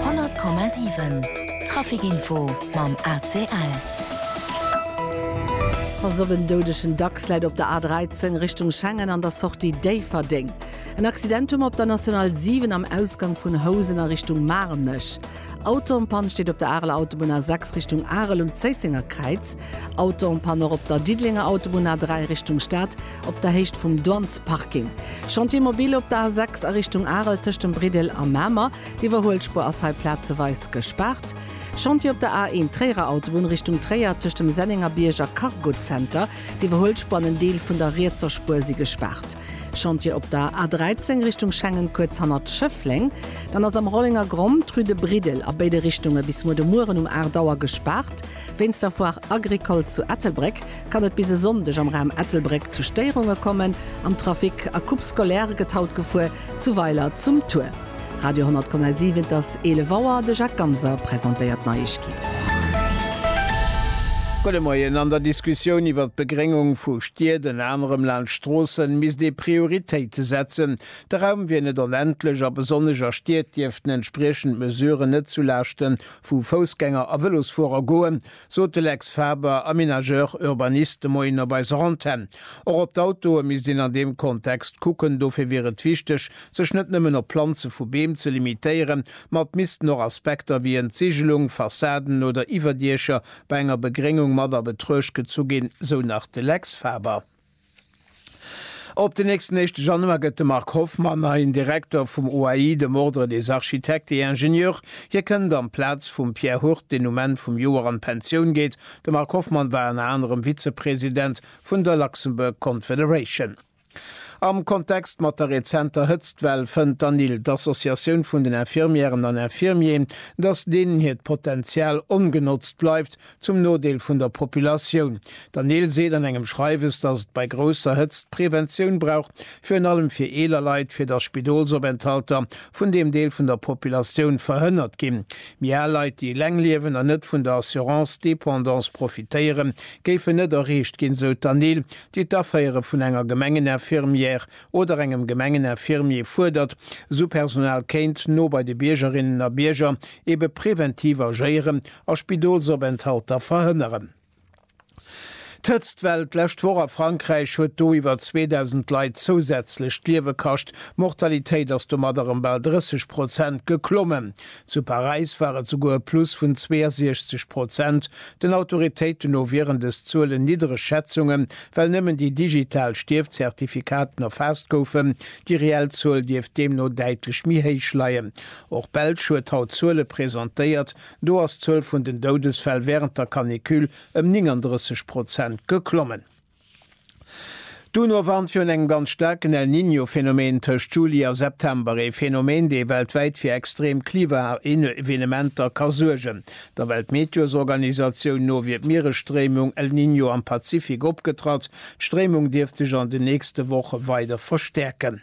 100,7 Trafic info mam ACL. Pass op, en doudegen Dachs läit op der A13 Richtung Schengen an der Sortie Déifferdeng. En Accident hu mer op der National 7 am Ausgang vun Housen a Richtung Maarnech. Auto en panne steet op der Areler Autobunn A6 Richtung Arel um Zéissenger Kräiz. Auto en panne och op der Diddelenger Autobunn A3 Richtung Stad. Op der Héicht vum Douanesparking. Chantier mobile op der A6 a Richtung Arel tëscht dem Bridel a Mamer. D'Iwwerhuelspuer ass hei plazeweis gespaart. Chantier op der A1 Tréierer Autobunn Richtung Tréier tëscht dem Sennengerbierg a Cargozenter. D'Iwwerhuelspuer an en Deel vun der rietser Spuer si gespaart. Chantier op der A13 Richtung Schengen kuerz hannert Schëffleng. Dann ass am Rollengergronn d'Rue de Bridel a béide Richtunge bis muer de Mueren um 8 Auer gespaart. Wéinst der Foire Agricole zu Ettelbréck kann et bis e Sonndeg am Raum Ettelbréck zu Stéierunge kommen am Trafic. A Coupe scolaire gëtt haut gefuer zu Weiler zum Tour Radio 10,7. Et ass 11 Auer, de Jacques Ganser presentéiert d'Neiegkeeten. Gudde Moien, An der Diskussioun iwwert d'Begréngung vu Stied, ënner anerem laanscht Stroossen, misst ee Prioritéite setzen. De Raum wier net onendlech a besonnesch a Stied dierften entspriechend Mesuren net zu Laaschten Vu Foussgänger a Vëlosfuerer goen, sot de Lex Faber, Aménageur urbaniste, de Moien op eiser Antenn. Och op d'Autoe misst een an deem Kontext kucken. Dofir wier et wichteg, sech net nëmmen op Planze vu Beem ze limitéieren, ma et missten och Aspekter wéi Entzigelung, Fassaden oder Iwwerdiecher bei enger Begréngung mat a Betruecht gezu ginn, sou nach de Lex Faber. Op den nächsten éischte Januar gëtt de Marc Hoffmann neien Direkter vum OAI, dem Ordre des Architectes et Ingénieurs. Hie kënnt an d'Plaz vum Pierre Hurt, deen um Enn vum Joer an d'Pensioun geet. De Marc Hoffmann war ënner anerem Vizepresident vun der Luxembourg Confederation. Am Kontext mat der rezenter Hëtztwell fënnt d'ANIL, d'Associatioun vun den Infirmièren an Infirmiers, datt deenen hiert Potenzial ongenotzt bleift, Zum Nodeel vun der Populatioun. Der Neel seet an engem Schreiwes, datt et bei grousser Hëtzt Preventioun brauch, virun allem fir eeler Leit, fir datt Spidolsopenthalter vun deem Deel vun der Populatioun verhënnert ginn. Méi al Leit, déi eleng liewen an net vun der Assurance dépendance profitéieren, géifen net erreecht ginn, sou d'Anne Neel, déi d'Aféiere vun enger Gemengeninfirmière oder engem Gemengeninfirmier fuerdert, sou Personal kéint no bei de Biergerinnen a Bierger Ebe preventiv agéieren a Spidolsopenthalter verhënneren. D'Hëtztwell d'lescht Woch a Frankräich huet do iwwer 2.000 Leit zousätzlech d'Liewe kascht. D'Mortalitéit ass domadder ëm bal 30 Prozent geklommen. Zu Paräis war et souguer e Plus vun 62 Prozent. Den Autoritéiten no wieren dës Zuelen niddereg Schätzungen, well nëmmen déi digital Stierfzertifikaten erfaasst goufen. Déi reell Zuel dierft deemno däitlech méi héich leien. Och d'Belsch huet haut Zuele presentéiert. Do ass d'Zuel vun den Doudesfäll wärend der Canicule ëm 39 Prozent geklommen. D'UNO warnt virun engem ganz staarken El Niño-Phenomen tëscht Juli a September, ee Phenomen, dee weltwäit fir extrem Klimaevenementer ka suergen. Der Weltmeteosorganisatioun no wier d'Mieresstréimung El Niño am Pazifik opgetratt. D'Stréimung dierft sech an den nächste Woche weider verstäerken.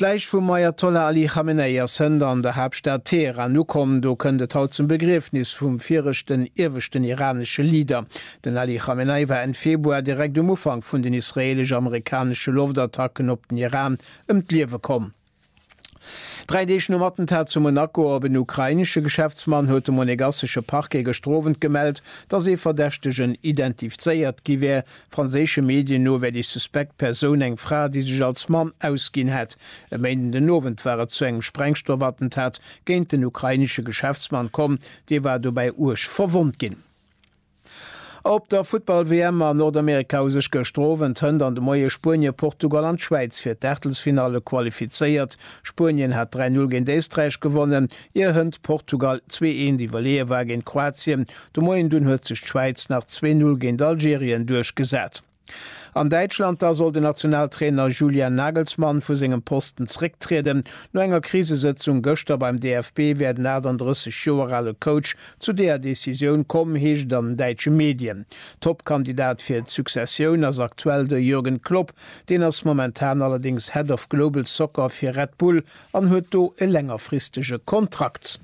D'Läich vum Ajatollah Ali Khamenei ass hënt an der Haaptstad Teheran ukomm. Do kënnt et haut zum Begriefnis vum viregten ieweschten iranesche Leader. Den Ali Khamenei war Enn Februar, direkt um Ufank vun den israeelesch-amerikanesche Loftattacken op den Iran, ëm d'Liewe komm. Dräi Deeg nom Attentat zu Monaco op en ukrainesche Geschäftsmann huet de monegassesche Parquet gëschter Owend gemellt, datt ee Verdächtegen identifzéiert gi wär. Franséische Medien no wär déi suspekt Persoun eng Fra, déi sech als Mann ausginn hätt. E Méinden den Owend war et zu engem Sprengstoffattentat géint den ukrainesche Geschäftsmann komm. Dee war dobäi uerg verwonnt ginn. Op der Futtball-WM a Nordamerika hu sech gëschter Owend, Hënt an de Moie Spuenien, Portugal an d'Schwäiz fir d'Aachtelsfinalle qualifizéiert. Spuenien hat 3-0 géint Éisträich gewonnen, ier Hënt Portugal 2-1 iwwerleeë war géint Kroatien. De Moien dunn huet sech d'Schwäiz nach 2-0 géint Algerien duerchgesat. An Däitschland da soll den Nationaltrainer Julian Nagelsmann vu sengem Posten zrécktrieden. No enger Krisesëtzung gëschter beim DFB wär den 38 Joer ale Coach zu deeër Decisioun komm, heescht et an den däitsche Medien. Top-Kandidat fir d'Successioun ass aktuell de Jürgen Klopp. Deen ass momentan allerdéngs Head of Global Soccer fir Red Bull An huet do e längerfristege Kontrakt.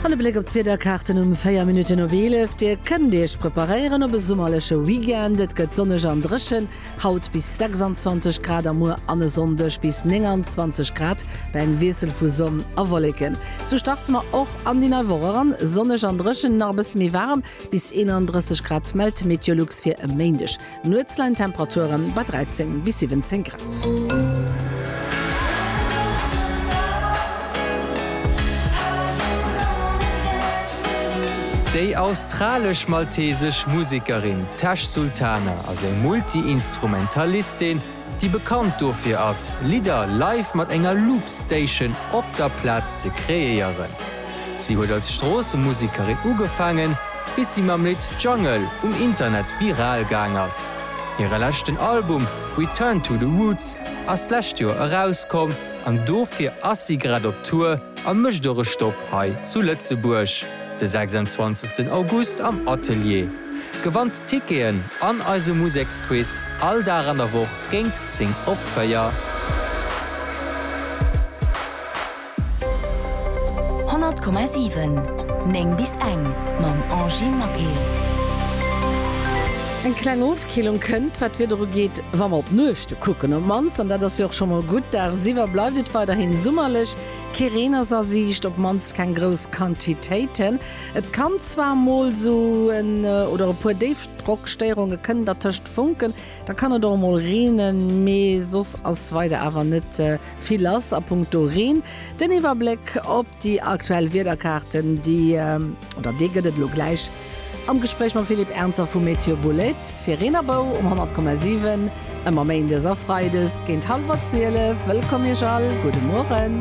An e Bléck op d'Wiederkaarten um 4 Minutten op 11, Dir kënnt Iech preparéieren op e summerleche Weekend. Et gëtt sonneg an dréchen, haut bis 26 Grad a muer an e Sonndeg bis 29 Grad bei engem Wiessel vu Sonn a Wolleken. Sou starte mer och an déi nei Woch eran, sonneg an dréchen, nach e bësse méi waarem, bis 31 Grad mellt Meteolux fir e Méindeg. Nuetslein Temperaturen bei 13 bis 17 Grad. Déi australesch-maltesesch Musekerin Tash Sultana ass eng Multi-Instrumentalistin, déi bekannt dofir ass, Lidder live mat enger Loopstation op der Plaz ze kreéieren. Si huet als Stroossemusikerin ugefaangen, bis si mam Lidd Jungle um Internet viral gaang ass. Hire leschten Album Return to the Roots ass d'lescht Joer erauskomm an dofir ass si grad op Tour a mécht och e Stopp hei zu Lëtzebuerg. De 26 August am Atelier. Gewannt Ticketen an eise Museksquiz all Dag an der Woch géint 10 op 4. Honnert Komma siwen, néng bis eng mam Angie Maquet. Eng kleng Ofkillung kënnt, wat d'Wieder ugeet, wa mer op d'Nuechte kucken. Op d'mannst, an dat ass jo och scho mol gutt, dagsiwwer bleift et weiderhi summerlech. Kee Reen ass a Siicht, op d'mannst keng grouss Quantitéiten. Et kann zwar mol sou en oder e puer Déifdrockstéierunge kënnen dertëscht funken, da kann et och mol reenen, mee soss ass weider awer net vill lass a punkto Reen. Den Iwwerbléck op déi aktuell Wiederkaarten, déi oder dee gëtt et elo gläich. Am Gespréich mam Philippe Ernzer vu Météo Boulait fir Reen a Bou um 100,7, ëmmer méindes a freides géint hallwer 12. Wëllkomm Iech all, gudde Mueren.